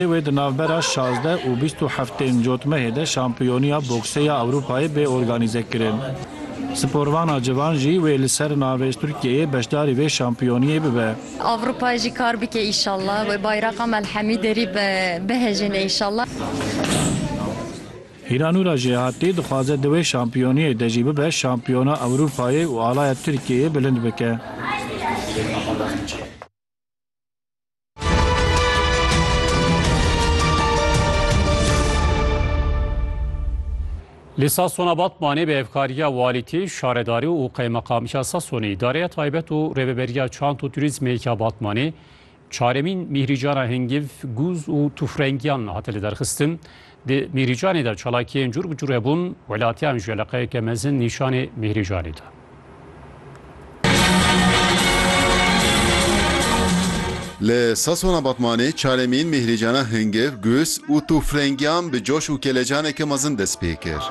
Wê di navbera şazdeh û bîst û heft ên cotmehê de şampiyoniya boksê ya Ewropayê bê organîzekirin. Sporvana civan jî wê li ser navê Tirkiyeyê beşdarî vê şampiyoniyê bibe. Ewropayê jî kar bike înşallah. Wê bayraqa me li hemî derî bihejîne înşallah. Hîranûra Jêhatî dixwaze di wê şampiyoniyê de jî bibe şampiyona Ewropayê û alaya Tirkiyeyê bilind bike. Li Sasona Batmanê bi hevkariya walîtî, şaredarî û qeymeqamiya Sasonê, îdareya taybet û rêveberiya çant û turîzmê ya Batmanê çaremîn mîhrîcana hingîv, gûz û tûfrengiyan hate liderxistin. Di Mîrîcanê de çalakiyên cûr bi cûr hebûn, welatiyan ji eleqeyeke mezin nîşanê Mîrîcanê da. Li sasona Batmanê çaremîn Mîhrîcana Hingiv, Gûs û tûfrengiyan bi coş û kelecaneke mezin dest pê kir.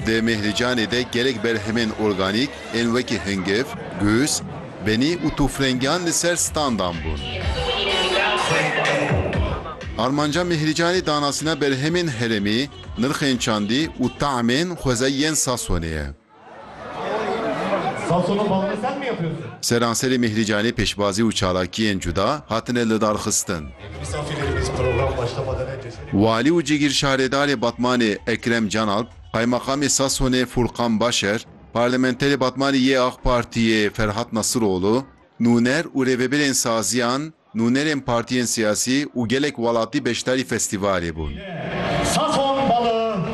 Di Mîhrîcanê de gelek berhemên organîk ên wekî hingiv, gûs, Benî û tûfrengiyan li ser standan bûn. Armanca Mîhrîcanî danasîna berhemên herêmî, nirxên çandî û taemên xwezayî yên Sasonê ye. Seranserê Mîhrîcanî pêşbazî û çalakiyên cuda hatine lidarxistin. Walî û Cigîrşarêdarê Batmanê Ekrem Canalp, Qaymakamê Sasonê Fûrkan Başer, Parlamenterê Batmanê yê Ak Partiyê Ferhat Nasiroglu, nûner û rêvebirên saziyan, nûnerên partiyên siyasî û gelek welatî beşdarî festîvalê bûn.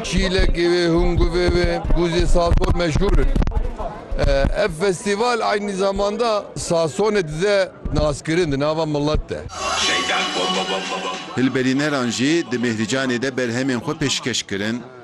Çîlekê wê, hunguvê wê, guzê sazon meşhûr in. Ev festîval eynî zaman de sazonê dide naskirin di nava milet de. Hilberîneran jî di Mêhrîcanê de berhemên xwe pêşkeş kirin.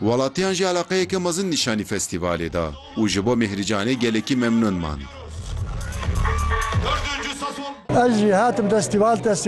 Welatiyan jî eleqeyeke mezin nîşanî festîvalê da û ji bo Mîhrîcanê gelekî memnûn man. Ez jî hatim destîval.